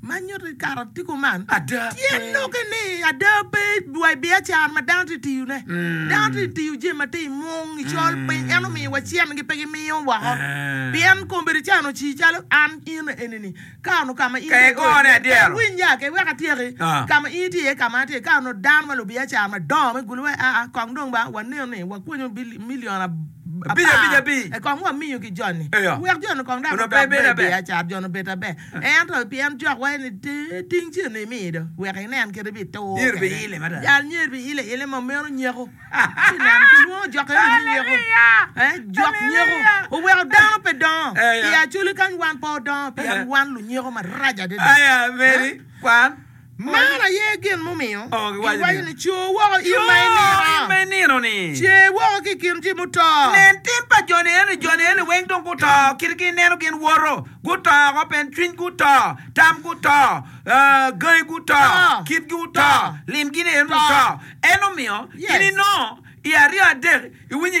Ma nyuto i karatigo man, tye noke ni ada pe dwai biacara ma dano tye ka tiyone. Dano tye ka tiyo jami ma tye i mung, i col piny. En omiyowa cente-gi, pe gimiyo woko. Pien kombeddi ca onongo ocii calo an, in, enini, ka onongo ka ma in itye iye, pe iwinya. Kek wek atyeki, ka ma in itye iye, ka ma an atye iye, ka onongo dano ma lubiacara madongo me gulu waci, Aa, kong dong ba wanen ni wakwonyo milion apar, kong wamiyo ki joni, wek joni kong dok gudok bene biacara, joni obed maber. Ento pien cokwa en itere ting cen ni imiyo do, wek inen kit ibi tur kwede. Jal myero bi ile ile ma meno nyeko. Ci neno, kilwongo jok eno ni nyeko. Jok nyeko oweko dano pe dongo i acoli kany wan pe odongo pien wan lunyeko marac adada. Man aye gin mumiyo giwaco ni, 'Cur woko in ma inino! Cer woko ki i kin jo muto! Nen tim pa jo-ni eno, jo-ni eno weng dong guto, kitgi ineno gin woto, guto woko, pien cwinygi oto, tamgi oto, gangi guto, kitgi oto, limgi-ni eno oto. Ento omiyo in inongo i aryo adek iwinyo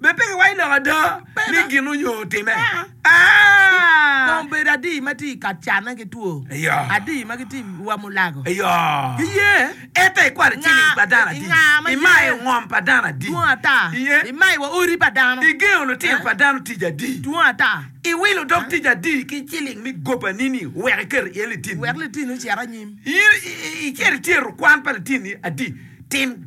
Bed pe kiwaco lok ada ni gin onyo time. Kong bed adi ma tye i ka canne ki two, adi ma gitye i wa mulago. Giye. Ento ikwato ciling pa dano adi? Imayo ngom pa dano adi? Dwong ata. Imayo wa odi pa dano? Igengo lutino pa dano tic adi? Dwong ata. Iwilo dog tic adi ki ciling me gobani-ni wek iketo iye litini? Wek litini ocit anyim. In icito ityero kwan pa litini adi? Tim.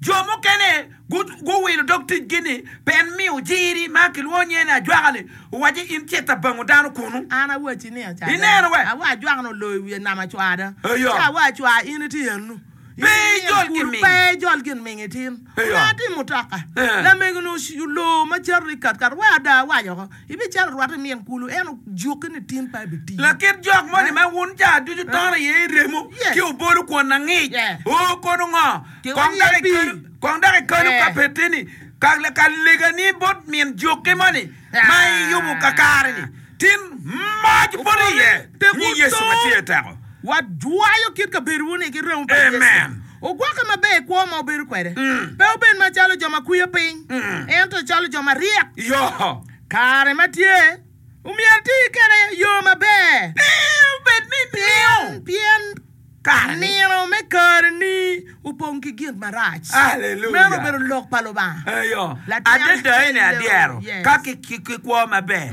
Jo mukene guwilo dog ticgi ni pe en miyo jiri ma kilwongo nyinge ni ajwaka-li, owaci, In cit abango dano kunu. An awacci ni acadde. Ineno we? Awa ajwaka-ni oloyo i wiye nama cwada. Eya. Ci awa acwa, In iti enu. Pe In ijol inyim gin kudu, ming. pe ijol gin ming itin. Eya. Onongo atim mutoka. Ee. Lamego-ni olor ma cato i katkat. Wek ada awac oko, ibicalo rwate i min kulu, ento jukke ni tin pe abitiyo. Lakit jok moni ma wun cawa ducu tono iye i remo, Yes. ci obolo kwon angic, Yes. oo kono ngo? Kong dok ikelu, kong dok ikelu ka pe tye ni ka ka legani bot min jokki moni ma iyubu kakare-ni tin moc boti iye, i nying Yecu ma tye teko. Wajwayo kit kabedowu-ni ki remo pa Yecu. Amen. Ogwokke maber i kwo ma wubedo kwede, pe wubed macalo jo ma kwiyo piny, ento calo jo maryek. Yo. Kare ma tye, omyero iti kwede i yo maber. Pe obed ni imiyo. Pien, pien. Ka nino me kareni opong ki gin marac, meno obedo lok pa Lubanga. Adada, en aye adyero ka kikwo maber.